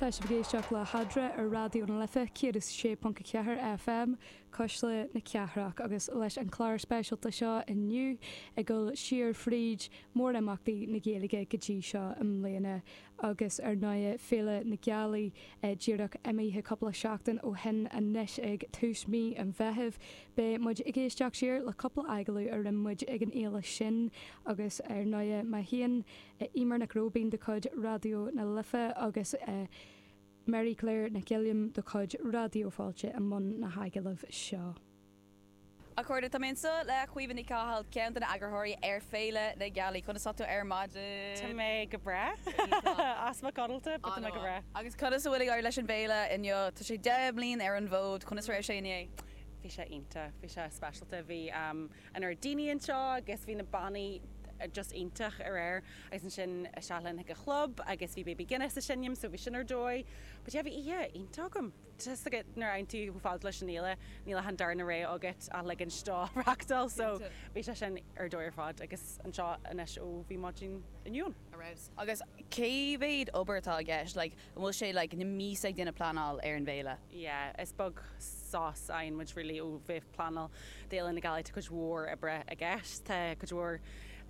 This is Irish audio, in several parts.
Tá sibh ag éisteacht le hEadra ar Raidió na Life 106.4 FM, Cuisle na Cathrach, agus leis an chlár speisialta seo inniu ag dul siar fríd mórimeachtaí na Gaeilge go dtí seo i mbliana agus ar ndóigh Féile na Gealaí díreach imithe cúpla seachtain ó shin anois ag tús mhí an Mheithimh. Beidh muid ag éisteacht siar le cúpla agallamh a rinne muid ag an fhéile sin agus ar ndóigh má théann Eimear Nic Róibín de chuid Raidió na Life agus Mary Claire Nic Uilliam de chuid Raidió Fáilte i mbun na hagallamh seo. A chairde, tá mé anseo le Caoimhe Ní Chathail, ceann de na eagarthóirí ar Féile na Gealaí. Conas tá tú ar maidin? Tá mé go breá. Easpa codlata, but tá mé go breá. Agus conas a bhfuil ag éirí leis an bhféile inniu? Tá sé deich mbliain ar an bhfód. Conas a raibh sé inné? Bhí sé iontach. Bhí sé speisialta. Bhí. an-lear daoine anseo agus bhí na bannaí just iontach aréir agus ansin isteach linn chuig an chlub agus bhí Baby Guinness ag seinm so bhí sin ar dóigh but yeah bhí oíche iontach agam just like nuair a fhanann tú chomh fada leis an fhéile níl ach an darna ré agat ach like ansin tú ag reáchtáil so bhí sé sin ar dóigh ar fad agus anseo anois ó bhí maidin inniu ann. Agus cé mhéad obair atá i gceist, like, An bhfuil sé like na míosa ag duine pleanáil ar an bhféile? yeah is beag sos a fhaigheann muid really ó bheith ag pleanáil d'Fhéile na Gealaí, tá cuid mhór oibre i gceist, tá cuid mhór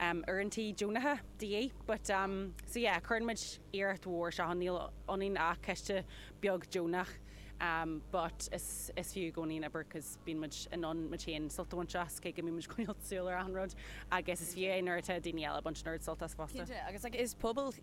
ehm uaireantaí deonacha de dhíth but ehm so yeah cuireann muid iarracht mhór isteach ann, níl ionainn ach coiste beag deonach ehm but is is fiú i gcónaí an obair cause bíonn muid in ann muid féin sult a bhaint as, cé go mbíonn muid ag coinneáil súil ar achan rud agus is fiú é nuair atá daoine eile ag baint an oiread sult as fosta. Cinnte, agus like is pobal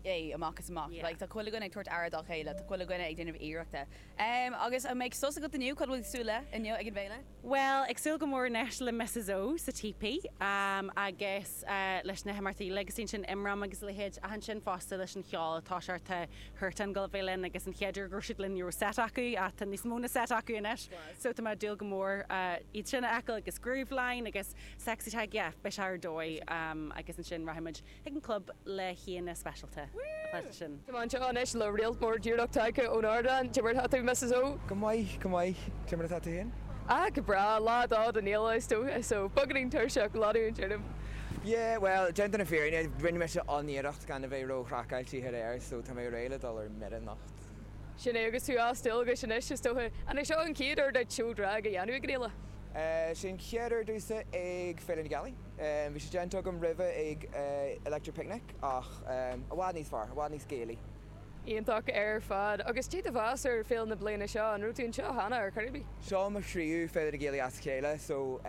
é amach is amach. Yeah. Like, tá chuile dhuine ag tabhairt aire dá chéile, tá chuile dhuine ag déanamh iarrachta. Em, agus an mbeidh sos agat inniu, cad a bhfuil ag súil le inniu ag an bhféile? Bhuel, ag súil go mór anois le Misses O sa típí, em, agus, eh, leis na himeachtaí like is ansin IMRAM agus a leithéid ach ansin fosta leis an cheol atá sé tá Huartan ag gabháil a bheith linn agus an chéad uair go raibh siad linn ní raibh seit acu ach tá níos mó ná seit acu anois Class. so tá mé ag dúil go mór, eh, iad sin a fheiceáil agus Grooveline agus Sexy Tadhg, yeah, beidh sé ar dóigh, em, agus ansin rachaidh muid chuig an gclub le haíonna speisialta atá sé sin. Tá mé anseo anois le réalt mór díreach tagtha ón ardán. Cé mar atá tú, Missus O? Go maith, go maith. Cé mar atá tú féin? Ah, go breá. Lá a dó den fhéile, is dócha, so beagáinín tuirseach ach ag leanúint orm. Yeah, bhuel, déanta na fírinne, rinne mise an-iarracht gan a bheith ró-chraiceáilte aréir, so tá mé réidh le dul ar mire anocht. Sin é, agus tú as dualgas anois, is dócha. An é seo an chéad uair duit seó drag a dhéanamh ag an fhéile? Sea, an chéad uair domhsa ag Féile na Gealaí. Bhí sé déanta agam roimhe ag Electric Picnic ach i bhfad níos fearr, i bhfad níos Gaelaí. Iontach ar fad. Agus cad é do mheas ar Féile na bliana seo? An raibh tú anseo cheana ar chor ar bith? Seo mo thríú Féile na Gealaí as a chéile so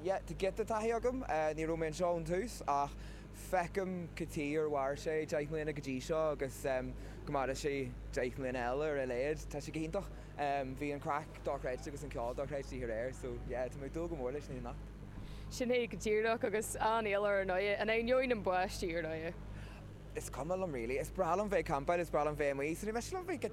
yeah, tá giota taithí agam. Ní raibh mé anseo ón tús ach feicim go dtí gur mhair sé deich mbliana go dtí seo agus go maire sé deich mbliana eile ar a laghad. Tá sé go hiontach. Bhí an craic dochreidte agus an ceol dochreidte de réir so yeah tá mé ag dúil go mór leis an anocht. Sin é go díreach agus an-fhéile ar ndóigh, in ainneoin na báistí ar ndóigh. Is cuma liom really, is breá liom bheith ag campáil, is breá liom bheith amuigh, is ní miste liom bheith get